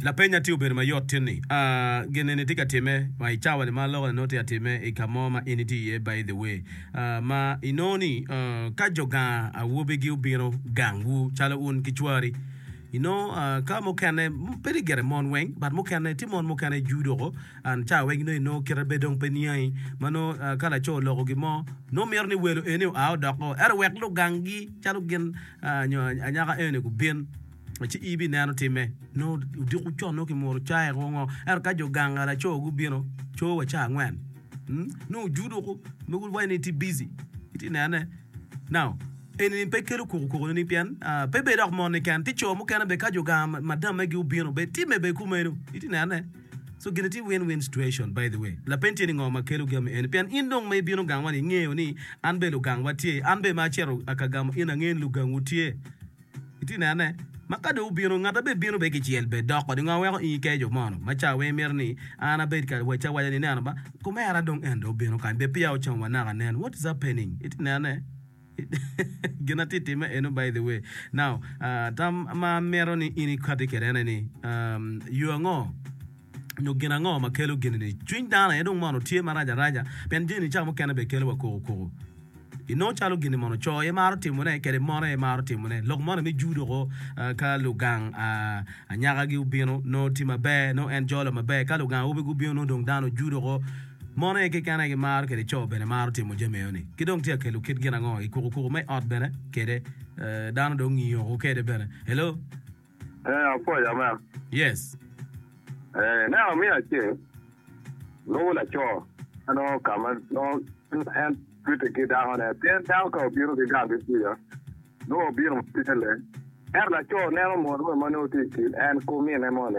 Lapeny atir obedo mayot tin ni, A gin eni tye ka timme ma i cawa-ni ma alokane nongo tye ka timme i ka mo ma in itye iye? By the way, ma inongo ni ka jo ganga awobegi obino gangwu calo un ki cwari, inongo ka mukene bedo gire mon weng but mukene tye mon mukene juu doko and ca weng nongo inongo kite bed dong pe niangi ma nongo ka laco oloko gin mo nongo mito ni welo eni oa odoko ento wek lugangi calo gin nyo anyaka eni gubin, ci ibineno timme. Nongo odiko con, nongo kimuro caye kwo ngo. Ento ka jo ganga laco gubino, co wa ca angwen, nongo ojudo woko, mogo waneno ni itye bici, itye nene. Now, eni-ni pe kelo koko koko ni pien pe ibedo dok moni keken, tye co mukene bene ka jo ganga madammegi obino bene timme bene kumeno, itye nene. So gini tye win win situation by the way lapeny tye ni ngo ma kelo gami eni pien in dong ma ibino gangwa ni ingeyo ni an bene lugang wa tye an bene ma aceto aka gamo in angeyo ni lugang wu tye iti neno ne ma ka dong wubino ngat ma bene bino bene kicel bed dok kodi ngo weko in ikeyo jo mono ma ca weng imito ni an abed kare wacci awaca ni neno ba kumera dong en dong obino kany be peya ocamo wa naka nen what is happening iti neno ne. Gin atye time eno by the way. Now, uh, tam ma amito ni in ikati kede ene ni, um, yo ango nyo gin ango ma kelo gini ni cwiny dano aye dong mono tye marac araca pien jeni ca mukene be kelo wa koko koko ino calo gini mono co aye maro timone kede mon aye maro timone lok moni me judo ko uh, ka lugang uh, anyaka gi obino no ti maber no en jolo maber ka lugang awobe gubino no dong dano judo ko Mon aye keken aye gimaro kede co bene maro timo jami eno-ni. Ki dong tye ka kelo kit gin ango i kukukuku me ot bene kede dano dong ngiyo woko kede bene. Hello. Ee, apwoyo amen. Yes. Ee, ineno amin acel lubo laco ma nongo ka ma nongo en twite ki dakone, pien dako ka obino ki gang ki kuca nongo obino ma tye leng. Ento laco neno mot moni ma nongo tye i kin en ki omine moni,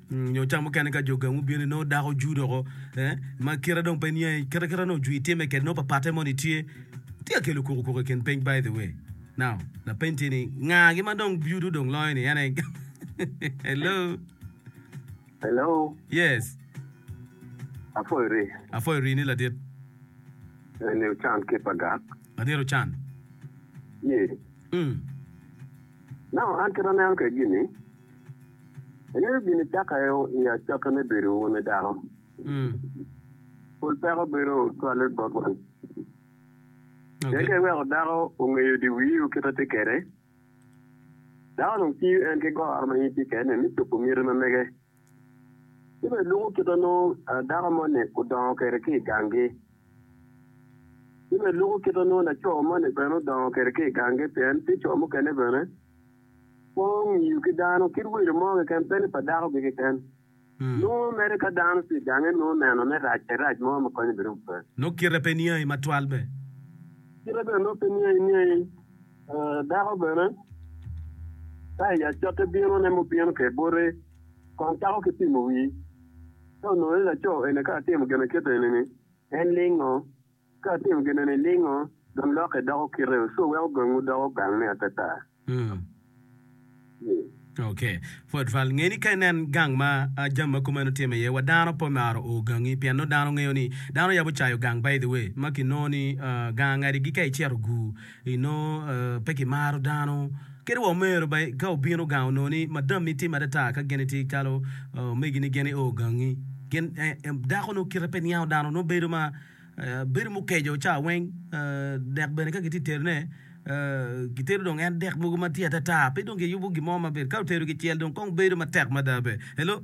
Nyo cam mukene ka jo gang gubino nongo dako juu doko eh, ma kite dong pe niangi kite kite nongo juu itime kede nongo papatte moni tye tye akelo koko koko i kin peny by the way now lapeny tye ni nga gi ma dong beauty dong loyo ni ene hello Hello, yes afoyo ri. afoyo ri ni ladit Eni ocan ki pa gak. ladit ocan Ye. mm. Now an kit aneno ke gini, Inyuto gin caka i acokke me bedo wun i dano. Pol peko bedo cwale bot wan. Pien ka iweko dako ongeyo di wii o kite tye kede, dako dong ciyo en ki goro ma in itye kede ni mi cobo miti ma mege. Ci bene luko kite nongo dako mo ni odongo kede ki i gang gi. Ci bene luko kite nongo laco mo ni bene odongo kede ki i gang gi pien tye co mukene bene. Kwo omiyo ki dano kit welo mo keken, pe ni pa dako-gi keken. Nongo mere ka dano tye i gange, nongo neno me racce rac mo me konye bene ope. Nongo kite pe niangi matwal be. Kite bene nongo pe niangi niangi. Dako bene, ka i acotte binone mubino kede bote, kong cako ki pimo wii. Ka onongo ni laco eni ka atimo gin akit eni-ni, en lingo, Ka wutimo gin eni niningo, dong lokke doko kitewu, ci wuweko gangwu doko gang ni atata. Ni. Ok. Pwod twal. Nge ni ka inen gang ma jami ma kumeno time iye, wa dano pe omaro o gangi, pien nongo dano ngeyo ni dano yabo cayo gang by the way, ma ki nongo ni gangi adigi ka icito gu I nongo pe kimaro dano. Kadi wa omero ba ka obino gang onongo ni madami tim adada ka gin itye ikalo omegi ni gin io gangi. Gin dako nongo kite pe niango dano nongo bedo ma bedo mukeco ca weng dek bene ka gitye terone gitero dong en dek mogo ma tye atata pe dong giyubo gin mo ma ber ka otero kicel dong kong bedo matek mada bene. Hello.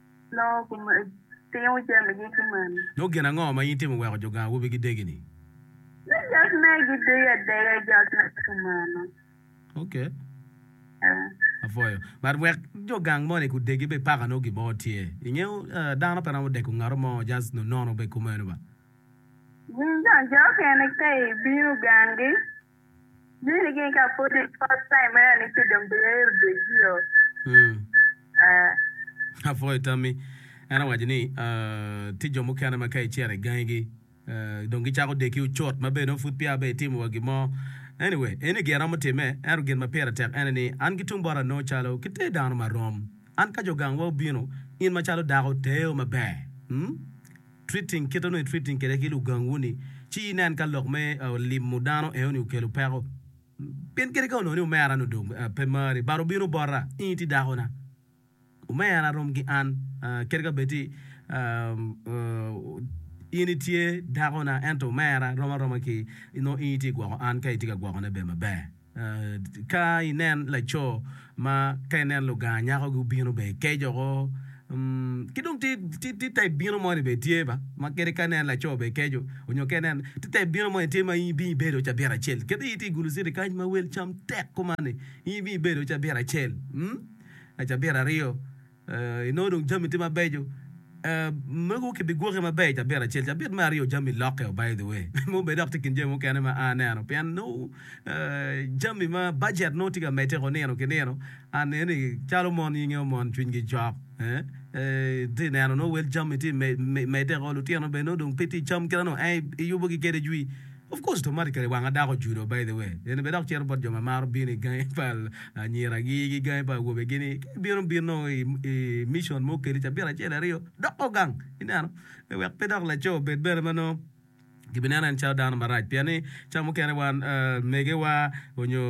Loo gutimo jamigi ki mani. Dong gin ango ma in itimo weko jo gang awobi gidegi-ni? Ni jot me gidegi adega i jot me kumeno. Ok. Eh. Apwoyo. But wek jo gang moni gudegi be paka nongo gin mo tye. I nge dano pe romo deko ngato mo just nonono be kumeno ba. Gin gang jo okene ka ibino gangi. Dini gin ka pudi first time mena ni ci dong biyer Brazil. Mm. Ah. Apwoyo tammi. En awaco ni ah, tye jo mukene ma ka icito i gangigi ah, dong gicako deki ocut ma bene nongo pud peya bene itimo wa gin mo. Anyway, eni gin aromo timme, ento gin ma pire tek ene ni an ki tung bota anongo calo ki te dano ma rom. An ka jo gangwa obino, in macalo dako teo maber. Mm. Treating, Kit onongo i treating kwede ki lugangwu-ni, ci inen ka lok me limo dano enoni okelo peko. Pien kadi ka onongo ni omera-ni odong pe mari, bade obino bota, in iti dakona. Omera rom ki an, kadi ka bed ti in itye dakona, ento omera rom aroma ki nongo in iti gwoko an ka itye ka gwokone bene maber. Ka inen laco ma ka inen luganga nyako gubino bene ikeco ko ki dong tye type bino mo ni bene tye ba ma kadi ka inen laco bene ikeco nyo ka inen tye type bino mo ni tye ma in ibino ibedo cabit acel kit in tye igulu citi kany ma wel cam tek kuman ni in ibino ibedo cabit acel cabit aryo. Inongo dong jami tye mabeco. Mego ki bi gwoke maber cabit acel. Cabit me aryo jami lokke o by the way. Me obed dok tye i kin jami mukene ma a aneno pien nongo jami ma bajet nongo tye ka medde ko nino ki nino. An nene ni calo mon nyinge o mon cwiny gi cok. Tye neno nongo wel jami tye medde ko lutino bene nongo dong pe tye i cam kite nongo en i yubo gi kede jwi. Of course automatically wanga dako ojudo by the way eni bene dok cito bot jo ma maro bino i gangi pa anyira gi ki gangi pa awobe gi ni ka ibino bino i mission mo kedi cabit acel aryo doko gang ineno pe wek pe dok laco obed bene ma nongo ki bineno en calo dano marac pien ni ca mukene wan mege wa onyo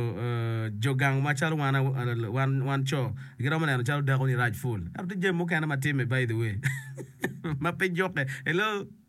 jo gang ma calo wan wan co gi romo neno calo dako ni rac full ento tye jami mukene ma time by the way ma pe juke hello.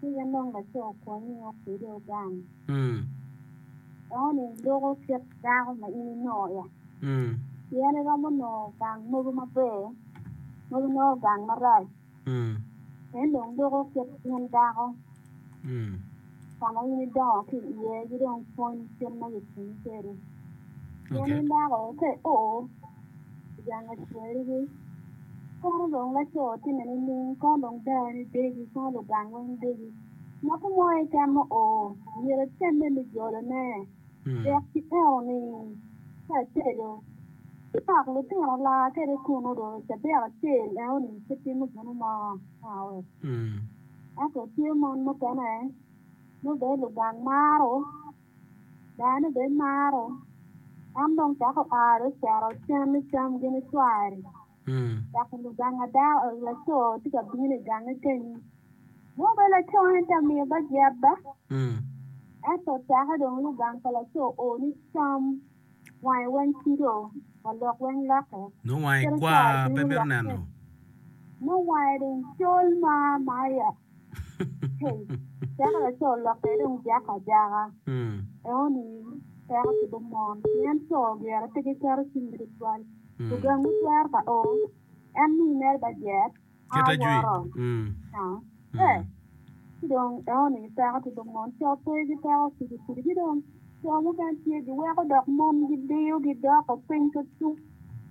Ci en dong laco okonyi ingo kwede ogang. Eno-ni loko kit dako ma in inongo ya. Pien iromo nongo gang mogo maber mogo inongo gang marac. En dong loko kit in dako ka ma in idongo ki iye ki dong pwony kit ma yot cwinyi kwede. Pien in dako ka i o Jang acwerigi. Kono dong laco timme nining? Kono dong dani degi, kono lugang weng degi. Ngati mo keken ma oo myero etemme me jolone. Dok ki eno ni ka etedo, ipako lutino laa kede kun odong cabit acel eno ni pe timo gino mo nawe. Ento tye mon mukene nongo bene lugang maro Dano bene maro, en dong cako aro cito cen ni cam gin icwari, dok luganga dako, laco tye ka bino i gangi kenyu. Nongo bene laco en tye ka miyo bajet ba? Ento ocakke dong lugang pa laco o ni cam. Wange weng cido, wa lok weng lokke. Nongo wange kwar, pe mito neno. Nongo wange dong col ma maya. Hey, teko laco olokke dong ojako ajaka. Eno-ni teko cibo mon, pien co gire pe giketo cinggi tutwal. Lugang gitwero ka o, en ni mere bajet. Kite jwi. Mm. Ci dong eoni gi peko ci dong mon co pe gi peko kudi kudi ci dong co mukene tye giweko dok mon gidiyo gidoko piny ka tung.